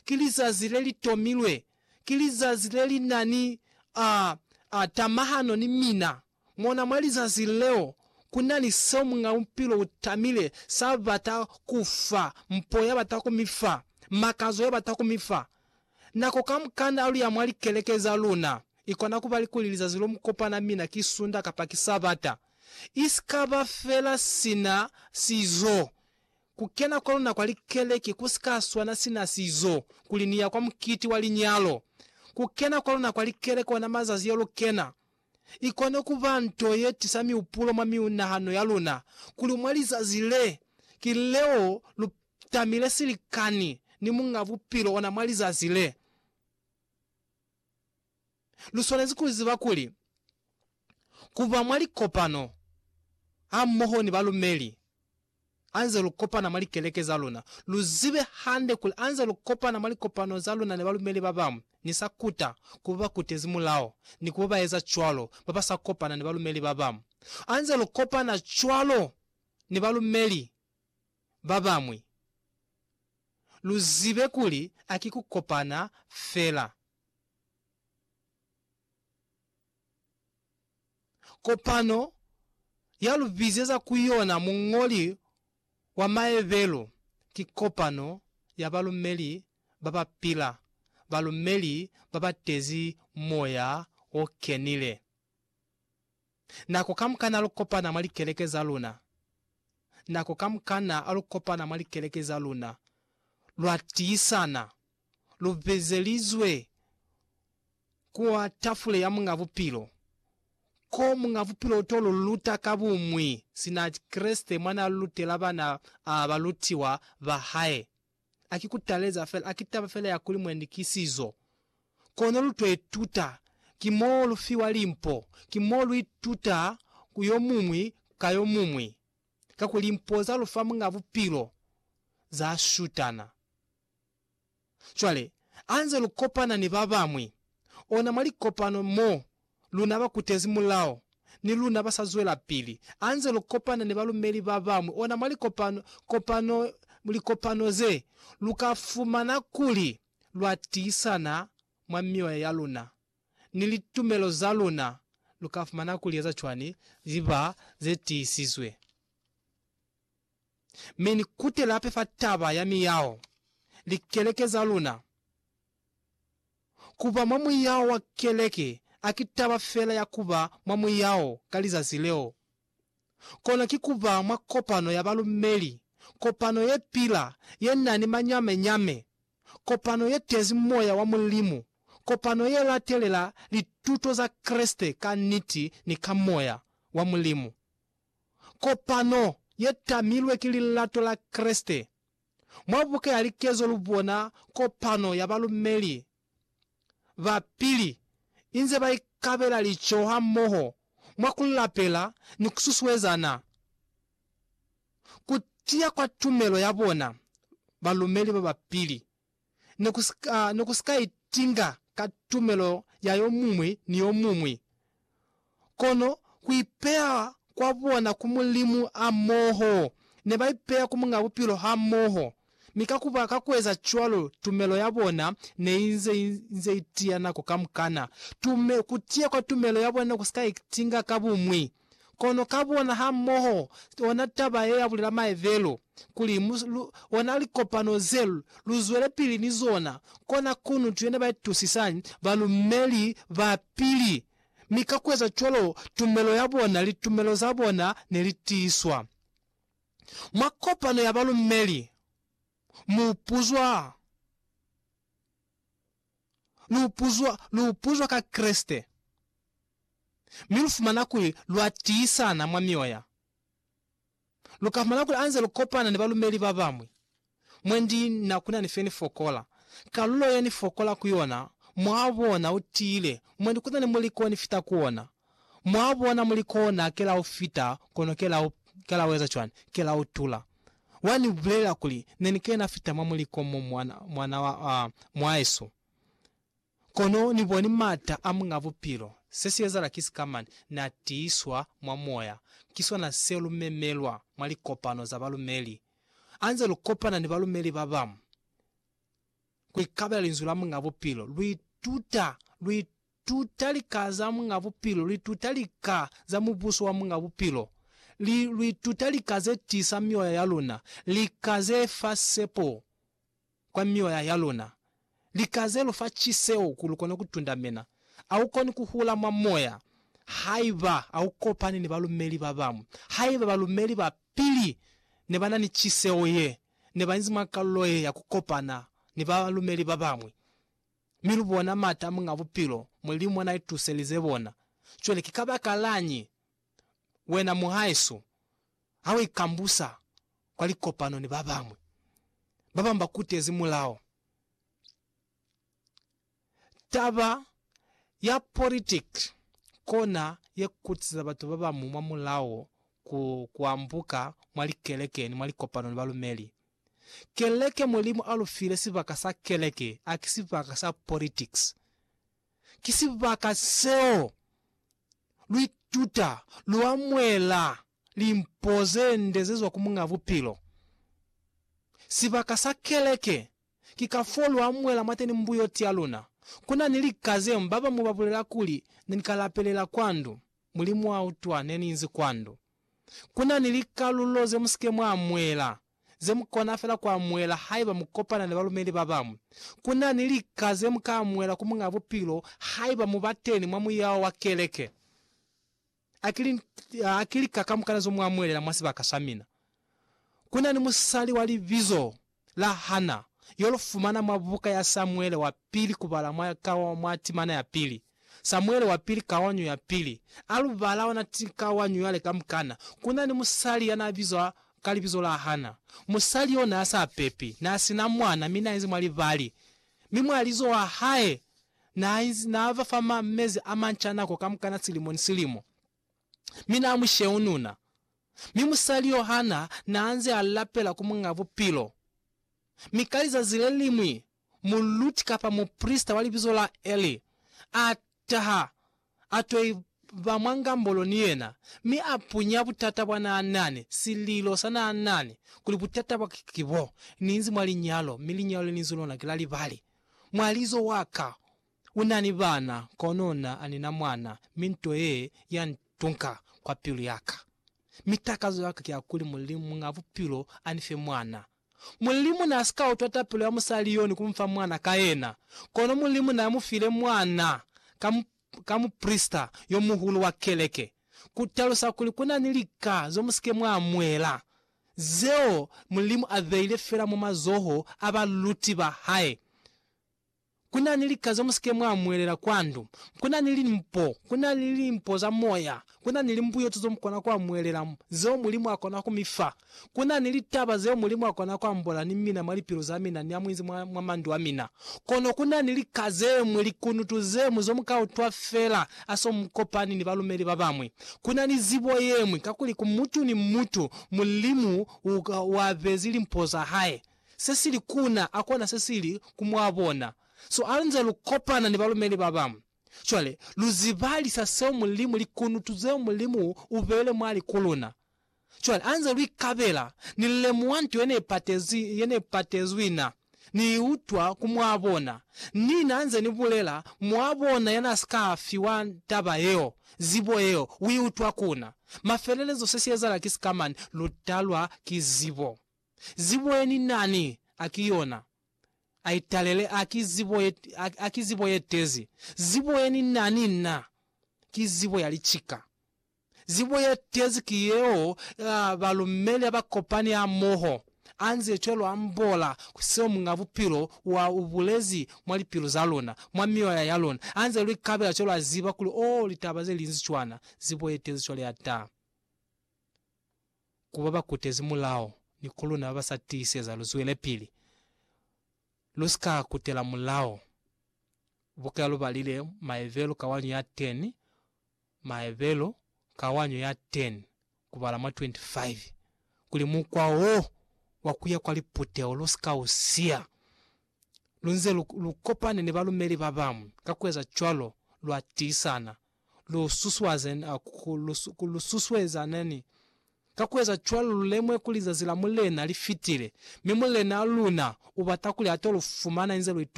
ki lizazi le li tomilwe, ki lizazi le li na ni a, a tamahano ni mina. Mona, mwa lizazi leo, ku na ni seo Muñ'a Bupilo u tamile, sa bata ku fa, mpo ya bata ku mi fa, makazo ya bata ku mi fa. Nako kamukana a lu ya mwa likeleke za luna, i kona ku ba likuli lizazi lo mu kopana mina ki Sunda kapa ki Sabata, i si ka ba fela sina sizo. Ku kena kwa luna kwa likeleke ku si ka swana sina sizo kuli ni ya kwa mukiti wa linyalo. Ku kena kwa luna kwa likeleke ona mazazi yo lu kena, i kona ku ba nto ye tisa mihupulo mwa miunahano ya luna kuli mwa lizazi le, ki leo lu tamile silikani ni Muñ'a Bupilo ona mwa lizazi le. Lu swanezi ku ziba kuli ku ba mwa likopano hamoho ni balumeli hanze lu kopana mwa likeleke za luna, lu zibe hande kuli hanze lu kopana mwa likopano za luna ni balumeli ba bañwi, ni sa kuta ku ba ba kutezi mulao ni ku ba ba eza cwalo ba ba sa kopana ni balumeli ba bañwi. Hanze lu kopana cwalo ni balumeli, babamwi. Luzibe kuli aki kukopana fela. Kopano yalubizeza kuyona muñoli wa maebelo ki kopano ya balumeli babapila, balumeli babatezi Moya Okenile. Nako kamukana lu kopana mwa likeleke za luna, nako kamukana lu kopana mwa likeleke za luna, lwa tiisana, lu bezelizwe kwa tafule ya Muñ'a Bupilo, ko Muñ'a Bupilo uto lu luta ka bumwi, sina Kreste mwa na lutela bana ba balutiwa ba hae. a ki ku taleza fela, a ki taba fela ya kuli mwendi ki sizo. Kono lu to ituta, ki mo lu fiwa limpo, ki mo lu ituta ku yo muñwi ka yo muñwi, kakuli limpo za lu fa Muñ'a Bupilo za shutana. Cwale, ha nze lu kopana ni ba bañwi, ona mwa likopano mo, Luna ba kutezi mulao, ni luna ba sa zwelapili, anze lu kopana ni balumeli ba bañwi ona mwa likopano, kopano, likopano ze, lu ka fumana kuli lwa tiisana mwa mioya ya luna ni litumelo za luna. Lu ka fumana kuli eza cwani li ba ze tiisizwe. Mi ni kutela hape fa taba ya miyao. Likeleke za luna. Ku ba mwa muyao wa keleke a ki taba fela ya ku ba mwa muyao ka lizazi leo, kono ki ku ba mwa kopano ya balumeli, kopano ye pila, ye na ni manyame-nyame, kopano ye tezi moya wa Mulimu, kopano ye latelela lituto za Kreste ka niti ni ka moya wa Mulimu, kopano ye tamilwe ki lilato la Kreste Mwa buka ya likezo lu bona kopano ya balumeli ba pili inze ba ikabela lico hamoho mwa ku lapela ni ku susuezana ku tiya kwa tumelo ya bona. Balumeli ba ba pili ne ku si ka, ne ku si ka itinga ka tumelo ya yo muñwi ni yo muñwi, kono ku ipeya kwa bona ku Mulimu hamoho. Ne ba ipeya ku Muñ'a Bupilo hamoho, mi ka ku ba, ka ku eza cwalo, tumelo ya bona ne i nze, i nze i tiya nako kamukana. Tume, ku tiya kwa tumelo ya bona ne ku si ka itinga ka buñwi. Kono ka bona ha moho ona taba ye ya bulela maevelo kuli mu lu ona likopano ze lu zwele pili ni zona, kona kunutu yene ba itusisani balumeli ba pili, mi ka kueza cwalo tumelo ya bona, litumelo za bona ne li tiiswa. Mwa kopano ya balumeli mu puzwa. lu puzwa, lu puzwa ka Kreste, mi lu fumana kuli lwa tiisana mwa mioya. Lu ka fumana kuli anze lu kopana ni balumeli ba bañwi, mwendi na ku na ni fe ni fokola. Kalulo ye ni fokola ku yona mwaa bona u tiile, mwendi ku na ni muliko ni fita ku ona. Mwa bona muli kona ke la u fita, kono ke la u, ke la u eza cwani? Ke la u tula. Wa ni bulelela kuli, Ne ni kena fita mwa muliko mo, mwana, mwana wa, a, mwaesu. Kono Ni boni m'ata a Muñ'a Bupilo. Se si ezahala ki sika mane, Na tiiswa mwa Moya. Ki sona se lu memelwa mwa likopano za balumeli, anze lu kopana ni balumeli ba bañwi, ku ikabela Linzwi la Muñ'a Bupilo. Lu ituta, lu ituta. tuta lika za Muñ'a Bupilo, lu ituta lika za Mubuso wa Muñ'a Bupilo, li, lu ituta lika ze tiisa mioya ya luna, lika ze fa sepo kwa mioya ya luna, lika ze lu fa ciseo ku lu kone ku tundamena. A u koni ku hula mwa Moya haiba a u kopani ni balumeli ba bañwi. Haiba balumeli ba pili ne ba na ni ciseo ye, ne ba inzi mwa kalulo ye ya ku kopana ni balumeli ba bañwi. Mi lu bona mata Muñ'a Bupilo mwa limo na ituselize bona. Cwale ki kabakalañi wena muhaisu ha u ikambusa kwa likopano ni babañwi? Babañwi ba kutezi mulao. Taba ya politiki kona ye kutiza batu babañwi mwa mulao ku ambuka mwa likeleke ni mwa likopano ni balumeli. Keleke Mulimu a lu file sibaka sa keleke a ki sibaka sa politics. Ki sibaka seo lu ituta, lu amuela limpo ze nde ze zwa ku Muñ'a Bupilo. Sibaka sa keleke ki ka fo lu amuela mwa teni mbuyoti ya luna. Ku na ni lika zeo ba bañwi ba bulela kuli, Ne ni ka lapelela kwa ndu, Mulimu wa utwa, ne ni inzi kwa ndu. Ku na ni likalulo ze mu si ke mwa amuela, ze mu kona fela ku amuela haiba mu kopana ni balumeli ba bañwi. Ku na ni lika ze mu ka amuela ku Muñ'a Bupilo haiba mu ba teni mwa muyao wa keleke. A ki, a ki lika kamukana zo mu amuelela mwa sibaka sa mina. Ku na ni musali wa libizo la Hana, yo lu fumana mwa buka ya Samuele wa Pili kubala mwa ka mwa timana ya pili, Samuele wa Pili kawanyo ya pili, a lu bala ona kawanyo yale kamukana, ku na ni musali ya n'a bizwa ka libizo la Hana. Musali yo n'a sa pepi, n'a si na mwana, mi n'a inzi mwa libali. Mi mwa lizo wa hae n'a inzi, n'a ba fa ma, mezi a manca nako kamukana silimo ni silimo. mi na musheununa, mi musali yo hana na nze a lapela ku Muñ'a Bupilo. Mi ka lizazi le liñwi, muluti kapa muprisita wa libizo la Eli a taha, a to iba mwa ngambolo ni yena, mi a punya butata bwa na nani, sililo sa na nani, kuli butata bwa ka ki bo, Ni inzi mwa linyalo, mi linyalo le ni inzi lona ki la libali. Mwalizo wa ka, U na ni bana, kono na, a ni na mwana, mi nto ye ya ntunka kwa pilu ya ka. Mi takazo ya ka ki ya kuli Mulimu, Muñ'a Bupilo, a ni fe mwana. Mulimu n'a si ka utwa tapelo ya musali yo ni ku mu fa mwana ka yena, kono Mulimu n'a mu file mwana ka, ka muprisita yo muhulu wa keleke. Ku talusa kuli ku na ni lika zo mu si ke mwa amuhela, zeo Mulimu a beile fela mwa mazoho a baluti ba hae. Ku na ni lika ze mu si ke mwa mwelela kwa ndu. Ku na ni limpo. Ku na ni limpo za moya. Ku na ni limbuyeto zeo mu kona ku amwelela, zeo Mulimu a kona ku mi fa. Ku na ni litaba zeo Mulimu a kona ku ambola ni mina mwa lipilu za mina ni amuinzi mwa, mwa mandu a mina. Kono ku na ni lika ze ñwi, likunutu ze ñwi, zo mu ka utwa fela ha so mu kopani ni balumeli ba bañwi. Ku na ni zibo ye ñwi, kakuli ku mutu ni mutu, Mulimu u, u abezi limpo za hae. se si li ku na, akona se si li ku mwa bona. So a nze lu kopana ni balumeli ba bañwi, cwale lu zibalisa seo Mulimu, likunutu zeo Mulimu u beile mwa li ku luna. Cwale a nze lu ikabela, ni lemuha nto ye ne ipatezi, ye ne ipatezwi na, ni i utwa ku mwa bona. Ni na nze ni bulela, Mwa bona ya na si ka fiwa taba yeo, zibo yeo, u i utwa ku na. Mafelelezo se si ezala ki sika mane, lu talwa ki zibo. Zibo ye ni na ni a ki yona, a i talele, a ki zibo ye, a, a ki zibo ye tezi. Zibo ye ni na ni na ki zibo ya licika. Zibo ye tezi ki yeo ya balumeli ha ba kopani hamoho, a nze cwalo a mbola ku seo Muñ'a Bupilo wa u bulezi mwa lipilu za luna, mwa mioya ya luna, a nze lu ikabela cwalo a ziba kuli, Oh, litaba ze linzi cwana, zibo ye tezi cwale ya ta. ku ba ba kutezi mulao ni ku luna ba ba sa tiiseza lu zwelepili, lu si ka kutela mulao. Buka ya Lubalile, Maebelu kawanyo ya 10, Maebelu kawanyo ya 10 kubala mwa 25, kuli mukwa wo wa ku ya kwa liputeho lu si ka u siya. Lu nze lu, lu kopane ni balumeli ba bañwi, ka ku eza cwalo lwa tiisana lu susuezaneni. Ka ku eza cwalo lu lemuhe kuli zazi la Mulena li fitile, mi Mulenaa luna u bata kuli a to lu fumana inze lu ituka.